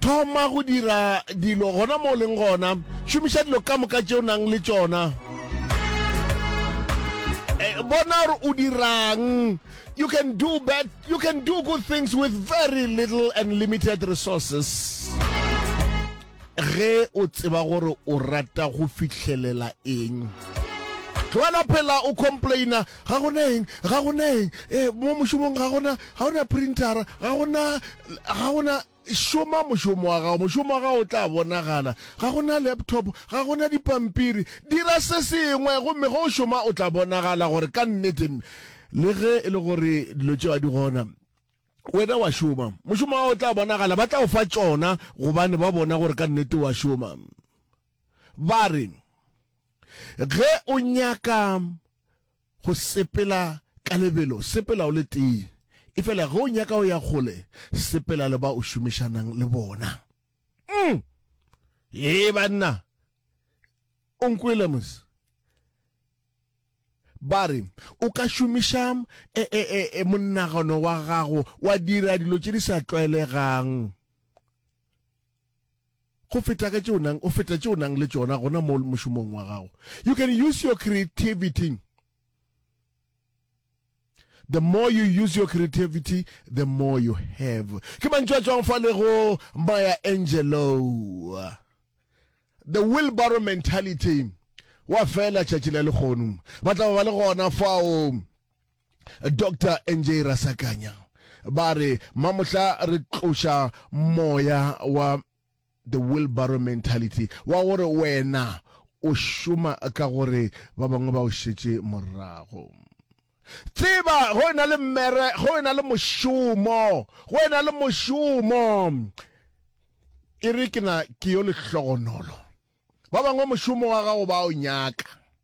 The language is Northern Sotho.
Thoma go dira dilo gona mo o leng gona. Šomiša dilo ka moka tše o nang le tšona. Eh, bona gore o dirang you can do bad you can do good things with very little and limited resources ge o tseba gore o rata go fitlhelela eng tlogela phela o complaina Ga go na eng, ga go na eng, e, mo mošomong ga go na, ga go na printara, ga go na, ga go na, šoma mošomo wa gago, mošomo wa gago o tla bonagala, ga go na laptop, ga go na dipampiri, dira se sengwe, gomme ge o šoma o tla bonagala gore ka nnete, le ge e le gore dilo tšeo a di gona, wena wa šoma, mošomo wa gago o tla bonagala, ba tla o fa tšona gobane ba bona gore ka nnete wa šoma. Ba re, Ge o nyaka. go sepela ka lebelo, sepela o le tee. Efela ge o nyaka go ya kgole, sepela le ba o šomišanang le bona. Mm. Ee, banna. O nkwele, mos? Ba re, o ka šomiša e, e, e, e, monagano wa gago wa dira dilo tše di sa tlwaelegang. go feta ka tše o nang, go feta tše o nang le tšona gona mo mošomong wa gago. You can use your creativity. The more you use your creativity, the more you have. Ke mantšu a tswang fa le go Maya Angelou. The wheelbarrow mentality. Wa fela tšatši la lekgono. Ba tla ba le gona fao. Doctor NJ Rasakanya ba re mamohla re tloša moya wa the wheelbarrow mentality wa gore wena o šoma ka gore ba bangwe ba o šetše morago tseba go ena le mmere go ena le mošomo go ena le mošomo e re ke na ke yo lehlogonolo ba bangwe mošomo wa gago ba o nyaka